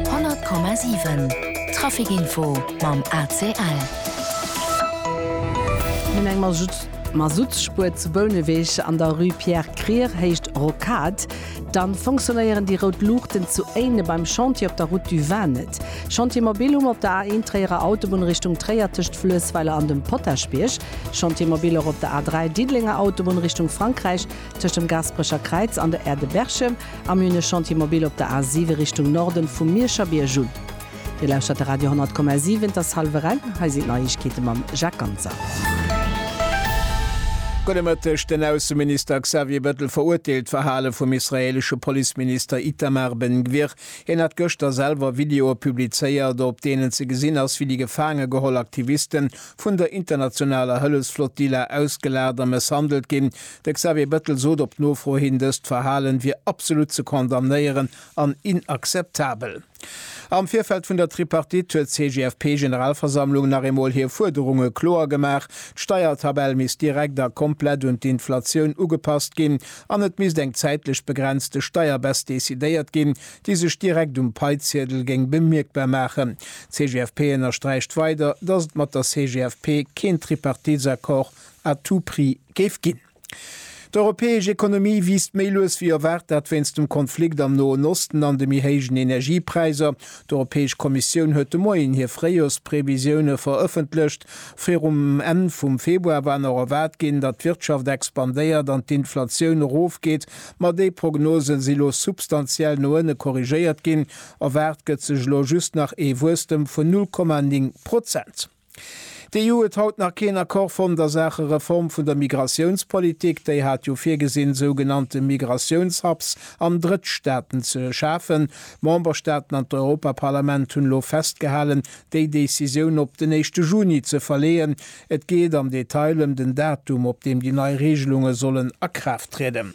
100,7 Trafic info mam ACL. Neben engem Masuttspuer zu Bouneweg an der Rue Pierre Krier, Héicht Rocade, dann fonctionnéieren déi rout Luuchten zu Éinen beim Chantier op der Route du Vin net. Chantier Mobile um op der A1 Tréierer Autobunn Richtung Tréier tëscht Fluessweiler an dem Potaschbierg. Chantier Mobile och op der A3 Diddelenger Autobunn Richtung Frankräich tëscht dem Gasperecher Kräiz an der Aire de Berchem. Am Münech Chantier Mobil op der A 7 Richtung Norden vum Mierscher Bierg un. Dir lauschtert de Radio 10,7, et ass hallwer eng, hei sinn d'Neiegkeete mam Jacques Ganser. Gudde Mëtteg, Den Ausseminister Xavier Bettel verurteelt d'Verhale vum israeelesche Policeminister Itamar Ben Gvir. Hien hat gëschter selwer Videoe publizéiert, op deenen ze gesinn ass, wéi déi gefaange geholl Aktiviste vun der internationaler Hëllefsflottilla ausgelaat a mësshandelt ginn. De Xavier Bettel sot op Nofro hin, dëst Verhalen wier absolut ze condamnéieren an inakzeptabel. Am Virfeld vun der Tripartite huet d'CGFP-Generalversammlung nach eemol hir Fuerderunge kloer gemaach, d'Steiertabell misst direkt a komplett un d'Inflatioun ugepasst ginn an et misst eng zäitlech begrenzte Steierbess decidéiert ginn, déi sech direkt um Paiziedel géing bemierkbar maachen. D'CGFP ënnersträicht weider, datt et mat der CGFP keen Tripartitsaccord à tout prix géif ginn. D'europäesch Ekonomie wiisst méi lues wéi erwaart, dat wéinst dem Konflikt am Noen Osten an de méi héijen Energiepräiser. D'Europäesch Kommissioun huet de Moien hir Fréijoersprevisioune verëffentlecht. Virum Enn vum Februar war nach erwaart ginn, datt d'Wirtschaft expandéiert an d'Inflatioun erofgeet, ma déi Prognose si lo substantiell no ënne korrigéiert ginn. Erwaart gëtt sech elo just nach ee Wuesstem vun 0,9 Prozent. D'EU huet haut nach keen Accord fonnt a Saache Reform vun der Migratiounspolitik. Déi hat jo virgesinn, sougenannte Migratiouns-Hubs an Drëttstaaten ze schafen. D'Memberstaaten an d'Europaparlament hunn elo festgehalen, déi Decisioun op den éischte Juni ze verleeën. Et geet am Detail ëm den Datum, op deem déi nei Reegelunge sollen a Kraaft trieden.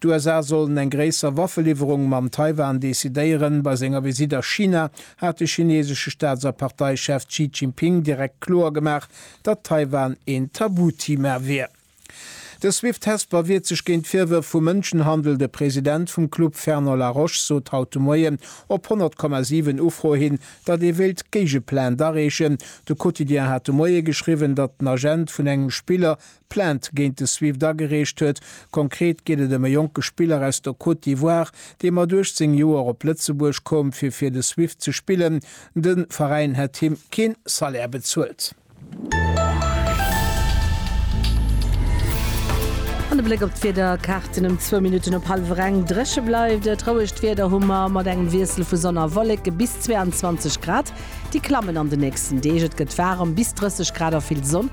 D'USA sollen eng gréisser Waffeliwwerung mam Taiwan decidéieren. Bei senger Visitt a China hat de chinesesche Staats a Parteichef Xi Jinping direkt kloer gemaach, datt Taiwan een Tabuthema wier. De Swift Hesper wiert sech géint Virwërf vu Mënschenhandel. De President vum Club Fernand Laroche sot haut de Moien op 100,7 Ufro hin, datt ee wéilt d'Géigeplänt areechen. De Quotidien hat de Moie geschriwwen, datt den Agent vun engem Spiller Plainte géint de Swift agereecht huet. Konkret geet et ëm e jonke Spiller aus der Côte d'Ivoire, dee mat 18 Joer op Lëtzebuerg koum, fir fir de Swift ze spillen. De Veräin hätt him kee Salaire bezuelt. An de Bléck op d'Wiederkaarten ëm zwou Minutten op hallwer eng. Dréche bleift et, rouegt Wieder hu mer mat engem Wiessel vu Sonn a Wolleke bis 22 Grad. Déi klammen an de nächsten Deeg, et gëtt waarem bis 30 Grad a vill Sonn.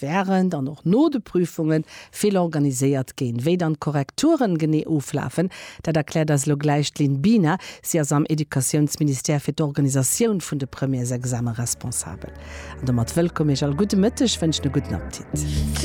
während an och no de Prüfunge vill organiséiert ginn. Wéi dann d'Korrekturen genee oflafen, dat erkläert eis elo gläich d'Lynn Biener. Si ass am Educatiounsministère fir d'Organisatioun vun de Premièresexame responsabel. An domat wëllkomm Iech all. Gudde Mëtteg, wënschen e gudden Appetit.